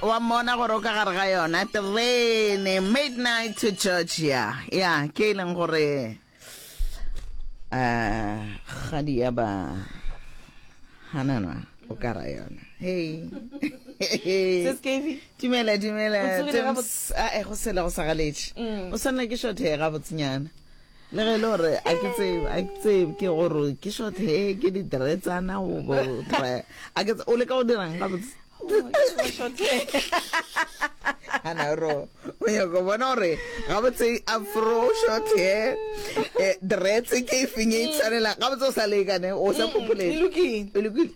wa mmona gore o ka gare ga yona terene midnight to georgia ya ke e leng gore um gadi ya ba hanana o ka ra yona hey dumela dumela a e go sele go sa galetše mm. o swanela ke shothe ga botsinyana le ge e le gore a ke tsebe a ke tsebe ke gore ke short hair ke di dretsana go bo dry a ke tsebe o le ka go dirang ga botse ana ro o ya go bona gore ga botse afro short hair eh, dretse ke e feng e tshwanela ga botse o sa lekane o sa phopholele e lokile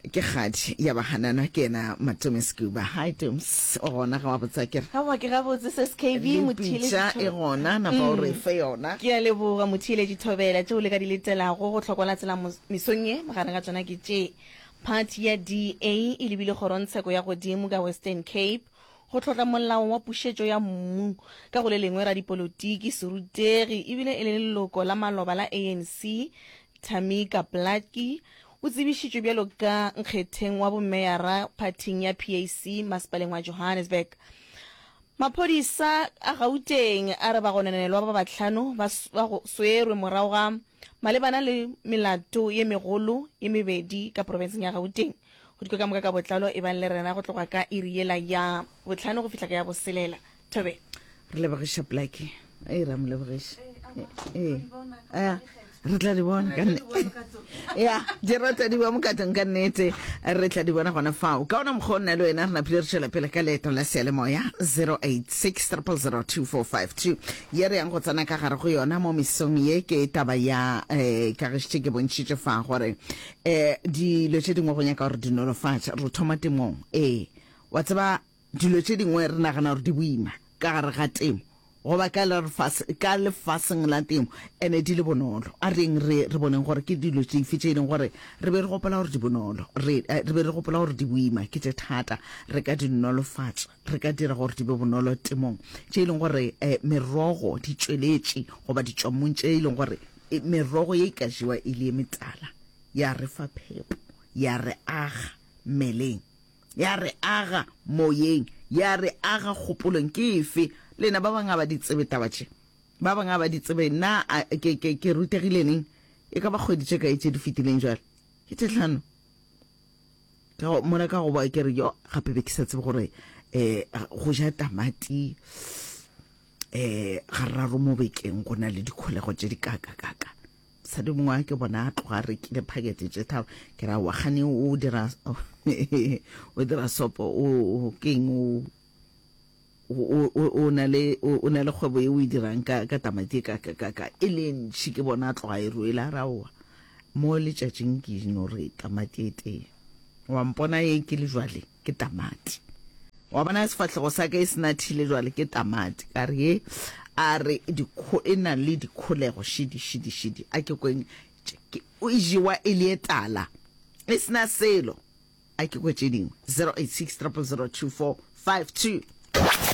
Ke kgadi ya ba hanana ke yena Matome Scuba. Hi Toms, o gona ge wa botsa ke re. Aowa ke gabotse se skv Motheeletši Thobela. Le pitša e gona napa o re fe yona. Ke a leboga Motheeletši Thobela, tšeo le ka di letelago go hlokwa la tsela mesong ye, magareng ga tšona ke tše. Phathi ya DA e lebile Kgorongtsheko ya Godimo ka Western Cape go tlhotla molao wa pušetšo ya mmu, ka go le lengwe radipolotiki, serutegi e bile e le leloko la maloba la ANC Tamika Blakkie O tsebišitšwe bjalo ka nkgetheng wa bomeyara phathing ya PAC masepaleng wa Johannesburg. Maphodisa a Gauteng a re bagononelwa ba bahlano ba swerwe morago ga malebana le melato ye megolo ye mebedi ka profenseng ya Gauteng. Go dikwe ka moka ka botlalo ebang le rena go tloga ka iri yela ya bohlano go fihla ka ya boselela. Thabe, re lebogiša Blackie. Ee, ra mo lebogiša. Ee. Ee. re tla di bona ka ya di rata di ba mokatong ka nnete re tla di bona gona fao ka ona mokgwa o nna le wena re naphile re tšwela pele ka leeto la sealemoya 0860002452 ye re yang go tsena ka gare go yona mo mesong ye ke taba ya um eh, kagišitše ke bontšhitše fa gore um dilo tše dingwe go nyaka gore dinolofatša re thoma temong ee wa tseba Dilo tše dingwe re nagana gore di boima ka gare ga temo goba ka lefaseng la temo ene di le bonolo. A reng re re boneng gore ke dilo tšefe tše e leng gore re be re gopola gore di bonolo, re be re gopola gore di boima, ke tše thata. Re ka di nolofatša, re ka dira gore di be bonolo temong. Tše e leng gore merogo, ditšweletše goba ditšwammung tše e leng gore merogo ye e ka jewa e le ye metala, ya re fa phepo, ya re aga mmeleng. ya re aga moyeng, ya re aga kgopolong. Ke efe? Lena ba bangwe ga ba di tsebe taba tše. Ba bangwe ga ba di tsebe. Na a, ke, ke, ke rutegile neng? E ka ba kgwedi tše kae tše di fetileng bjale? Ke tše hlano. Ka go, mola ka go ba ke re, yo, gape be ke sa tsebe gore eh, go ja tamati eh, gararo mo bekeng go na le dikholego tše di kaka-kaka. mosadi mongwe a ke bona a tloga a rekile phakete tše tharo ke ra wa gane o dira o dira sopo o keng o o na le o na le kgwebo e o e dirang ka ka tamati ka ka ka ka e le ntši ke bona a tloga e ruela a raowa mo letšatšing ke no re tamati e tee wa mpona e ke le jwale ke tamati. Wa bona sefahlego sa ka e se nathile jwale ke tamati ka re ye a re dikho e na le dikholego šidi šidi šidi a ke kweng o e jewa e le etala e sena selo a ke kwe tše dingwe 086 0002452